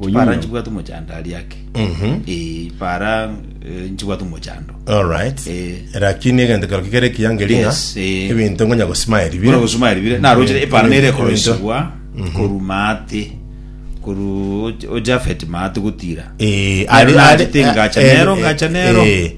Oyuya. chipara nchibwate omochando aria ake Mhm. Eh, para eh, nchibwate omochando Alright. Eh. Lakini egento kero kikere kiyangeria ng'a Yes, eh. ebinto ngonya gosimaya buna ribire. gosoma eribire narochire Eh, epara nere ebinto- ekorosigwa koru maate koru ojafet maate gotira Eh, Nero ari- ari- nachete ngacha eh, nero eh, ngacha nero eh,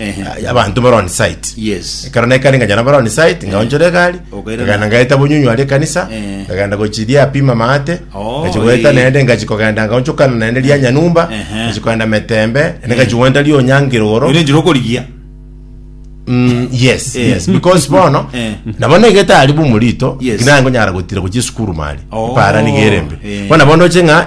Ehe. abanto bare on site Yes. ekero nekare ngajana bare on site ngaonchora egari Okairana. ngagenda ngaeta bonyunyu aria ekanisa Eh. ngagenda gochiria apima maate Oh, ngachi goeta eh. naende ngachi kogenda ngaonchokana naende ria nyanyumba Ehe. ngachi kogenda metembe ende ngachi goenda ria onyangiroro Ere njira okorigia. Mm, yes Eh. yes because bono Eh. nabo negete ari bumurito Yes. kinango nyara gotira gochia esukuru mari Oh, para nigerembe eh. bono bono oche ng'a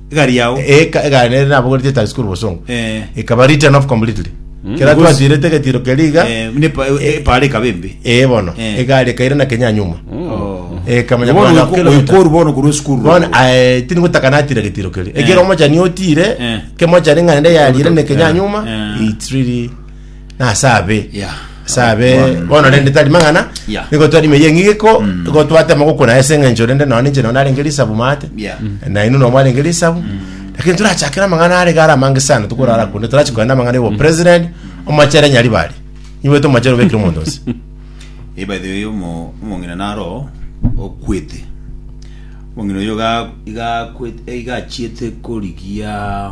egari yao Eka egari nere nabogoretie etax korwa bosongo Eh. ekaba written off completely Mm, kera because- twatirete egetiro keria iga Eh, buna epa- e- epara ekaba embe ee bono Eh. egari ekaira na kenya nyuma Oh. ekamanya Bono kwana oiko- kilometer. oikoru bono korwa esukuru bono ae, tiri gotaka natira getiro keria Eh. ekero omochani otire Eh. kemochani ng'ande yarire ne kenya Eh. nyuma Eh. it's really na ase abe Yeah. ase abe One. bono rende tari mang'ana Yeah. nigo twarime ye ng'igiko nigo twatema gokuna ase eng'encho rende nao ninche nao narenge risabu mate Yeah. naino nao mwarenge risabu lakini turachakera amang'ana arege ara amange sana tukorara kunde turachi koenda amang'ana igo president omachere nyari bari iwe tomachere obekire omonto ose Eh, by the way omo omong'ina naro okwete omong'ina oyo ga- igakwete eh, igachiete korigia